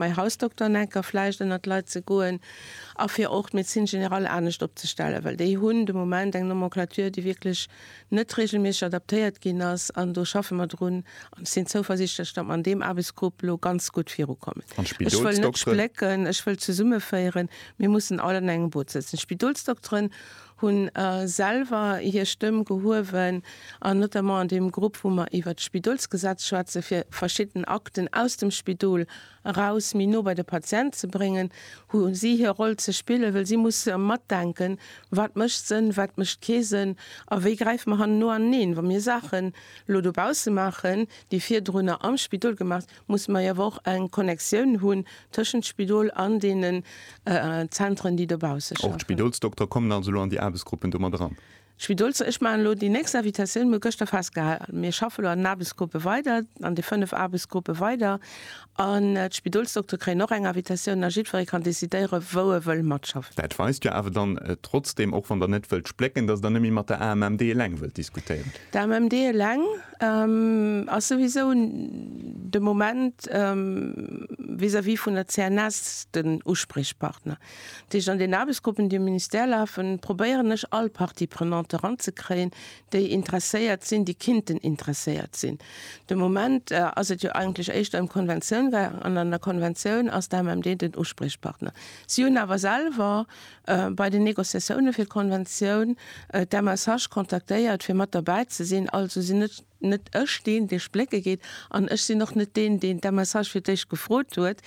mäi Hausdokter Necker vläicht ënnert d'Leit ze goen a fir och d'Médecine générale anescht opzestellen, well déi hunn de Moment eng Nomenclature, déi wierklech net reegelméisseg adaptéiert ginn ass. An do schaffe mer drun an ech sinn zouversichtlech, datt mer an deem Aarbechtsgrupp elo ganz gutt virukommen. Ech wëll net splécken, ech wëll zesummeféieren. Mir mussen all an engem Boot sëtzen. D'Spidolsdokteren. hunn selwer hir Stëmm gehuewen an notamment an deem Grupp, wou mer iwwert d'Spidolsgesetz schwätzen, fir verschidden Akten aus dem Spidol eraus méi no bei de Patient ze bréngen, hu si hir Roll ze spillen, well si musse matdenken, wat mécht Sënn, wat mécht kee Sënn a wéi gräife mer hanneno aneen, wa mir Saachen elo dobausse maachen, déi virdrunner am Spidol gemaach. musse mer awer och eng Connectioun hunn tëschent Spidol an deenen Zentren, déi dobausse schaffen. Och d'Spidolsdoktere kommen also elo an déi Aarbechtsgruppen do mat eran? D'Spidolsdo ech maachen elo déi nächst Invitatioun, mir hu gëschter festgehalen, mir schaffe elo an den Aarbechtsgruppe weider, an de fënnef Aarbechtsgruppe weider, an d'Spidolsdoktere kréien och eng Invitatioun a jiddweree kann decidéiere wou e wëll matschaffen. Dat weist jo awer dann trotzdeem, och wann Der net wëllt splécken, datt Der net méi mat der AMMD eleng wëllt diskutéieren. D'AMMD eleng? Ass souwisou de Moment vis-à-vis vun der CNS den Uspriechpartner. Dat heescht, an den Aarbechtsgruppen, déi um Ministère lafen, probéieren ech all Parties prenantes eranzekréien, déi interesséiert sinn, déi kinnten interesséiert sinn. De Moment ass et jo eigentlech éischter ëm Konventioun gaangen an an der Konventioun ass d'AMMD den Uspriechpartner. Si hunn awer selwer bei den Negociatioune fir d'Konventioun d'MSH kontaktéiert fir mat derbäi ze sinn. Also sinn net net ech deen dee splécke geet an ech sinn och net deen deen d'MSH fir d'éischt gefrot huet,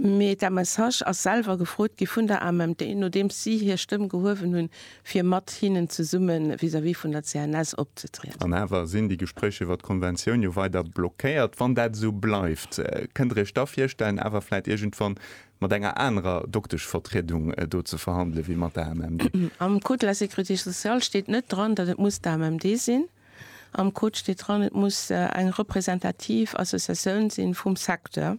mee d'MSH ass selwer gefrot gi vun der AMMD nodeems si hir Stëmm gehuewen hunn fir mat hinnen zesumme vis-à-vis vun der CNS opzetrieden. An awer sinn déi Gespréich iwwer d'Konventioun jo weider blockéiert. Wann dat esou bleift, kënnt Der Iech da virstellen awer vläit iergendwann mat enger anerer Dokteschvertriedung do ze verhandelen, wéi mat der AMMD. Am Code de la sécurité sociale steet net dran, datt et muss d'AMMD sinn. Am Code steet dran, et muss eng representativ Associatioun si vum Secteur.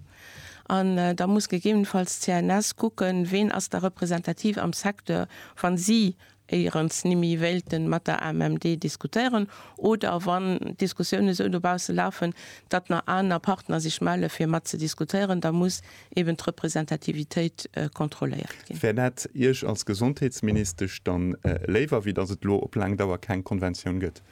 An da muss gegebenenfalls d'CNS kucken, ween ass da representativ am Secteur, wa si éierens nimi wéilten mat der AMMD diskutéieren oder wann Diskussiounen esou dobaussen lafen, datt na aner Partner sech melle fir mat ze diskutéieren, da muss eben d'Representativitéit kontrolléiert ginn. Wär dat Iech als Gesondheetsministesch dann léiwer, wéi datt et elo op laang Dauer keng Konventioun gëtt?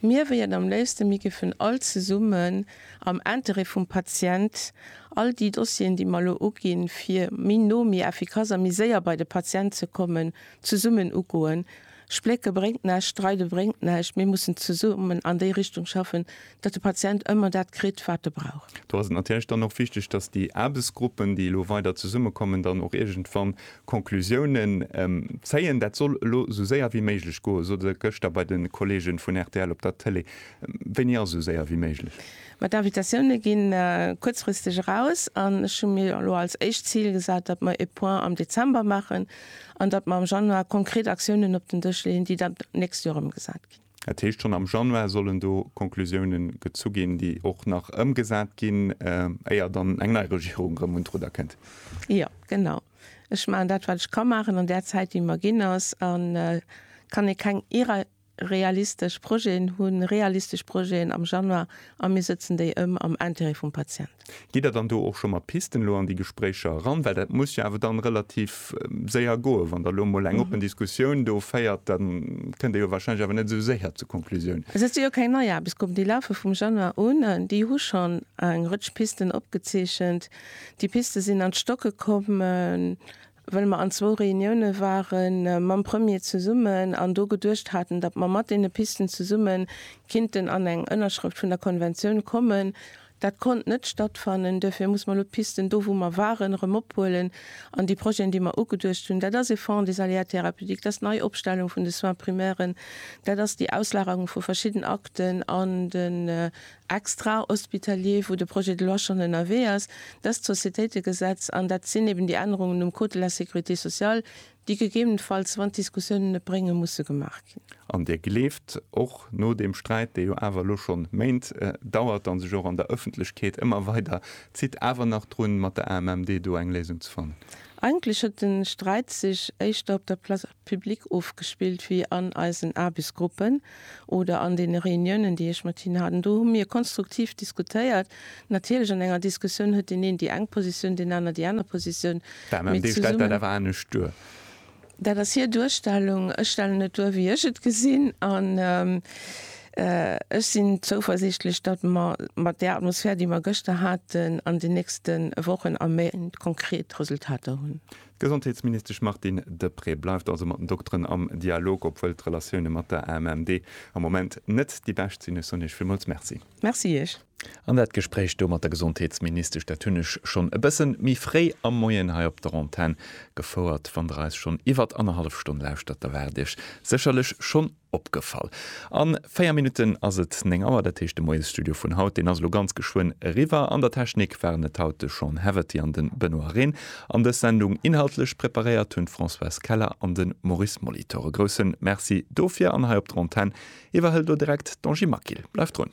Mir wéieren am léifsten, mir géifen all zesummen am Intérêt vum Patient all déi Dossieren, déi mer elo uginn, fir méi no, méi effikass a méi séier bei de Patient ze kommen, zesummen ugoen. Splécke bréngt näischt, streide bréngt näischt. Mir mussen zesummen an déi Richtung schaffen, datt de Patient ëmmer dat kritt, wat e brauch. Do ass et natierlech dann och wichteg, datt déi Aarbechtsgruppen, déi elo weider zesummekommen, dann och iergendwann Conclusiounen zéien. Dat soll elo esou séier wéi méiglech goen, sot e gëschter bei de Kolleege vun rtl op der Tëlee. Wéini ass esou séier wéi méiglech? Ma d'Invitatioune ginn kuerzfristeg eraus an ech hu mir elo als éischt Zil gesat, datt mer e Point am Dezember maachen an datt mer am Januar konkret Aktiounen op den Dësch leeën, déi dann d'nächst Joer ëmgesat ginn. Dat heescht, schonn am Januar sollen do Konklusioune gezu ginn, déi och nach ëmgesat ginn, éier dann eng nei Regierung erëm un d'Rudder kënnt. Jo, genau. Ech maachen dat, wat ech ka maachen an där Zäit, déi mer ginn ass. A kann ee keng irrealistesch Projeten hunn, realistesch Projeten am Januar a mir sëtzen déi ëm am Intérêt vum Patient. Geet Der dann do och scho mat Pisten elo an déi Gespréicher eran? Well dat muss jo awer dann relativ séier goen. Wann Der elo emol eng oppen Diskussioun do féiert, da kënnt Der jo wahrscheinlech awer net esou séier zur Konklusioun. Also dat si jo keng nei Aarbechtsgruppen, déi lafe vum Januar un. Déi hu schonn eng Rëtsch Pisten opgezeechent. Déi Piste sinn an d'Stocke komm. well mer an zwou Reunioune ware mam Premier zesummen an do geduecht haten, datt mer mat deene Pisten zesumme kinnten an eng Ënnerschrëft vun der Konventioun kommen. Dat konnt net stattfannen. Duerfir muss mer elo d'Pisten do, wou mer waren, erëm ophuelen an déi Projeten, déi mer ugeduecht hunn, dat ass e Fonds des aléas thérapeutiques, dat ass d'Neiopstellung vun de Soins primairen, dat ass déi Auslagerung vu verschidden Akten an den extrahospitalier, wou de Projet de loi schonn ënnerwee ass, dëst Sociétéitegesetz, an dat sinn eben déi Ännerungen um Code de la sécurité sociale, déi gegebenenfalls, wann d'Diskussiounen et bréngen, musse gemaach ginn. An Dir gleeft, och no deem Sträit, dee jo awer elo schonn Méint dauert an sech och an der Ëffentlechkeet ëmmer weider zitt, awer nach drun, mat der AMMD do eng Léisung ze fannen? Eigentlech huet de Sträit sech éischter op der Place. Public ofgespillt wéi an eisen Aarbechtsgruppen oder an deene Reuniounen, déi ech mat hinnen hat. An do hu mir konstruktiv diskutéiert. Natierlech an enger Diskussioun huet deen een déi eng Positioun, deen aner déi aner Positioun. D'AMMD stellt dat awer anescht duer. Dat ass hir Duerstellung. Ech stellen et duer, wéi ech et gesinn. An ech sinn zouversiichtlech, datt mer mat där Atmosphär, déi mer gëschter haten, an den nächste Wochen a Méint konkret Resultater hunn. D'Gesondheetsministesch Martine Deprez bleift also mat den Dokteren am Dialog, obwuel d'Relatioune mat der AMMD am Moment net déi bescht sinn. Ech soen Iech villmools Merci. Merci Iech. An dat Gespréich do mat der Gesondheetsministesch, dat hunn ech schonn e bësse méi fréi am Moien hei op der Antenn gefouert. Wann Der eis schonn iwwert annerhallef Stonn lauschtert, da waart Iech sécherlech schonn, Opgefall. An 4 Minutten ass et 9 Auer, dat heescht de Moiesstudio vun haut, deen ass elo ganz geschwënn eriwwer. An der Technik waren et haut de Sean Heverty an de Benoît Rehn. An dës Sendung inhaltlech preparéiert hunn d'Françoise Keller an de Maurice Molitor. E grousse Merci dofir. An hei op der Antenn iwwerhëlt elo direkt d'Angie Maquil. Bleift drun.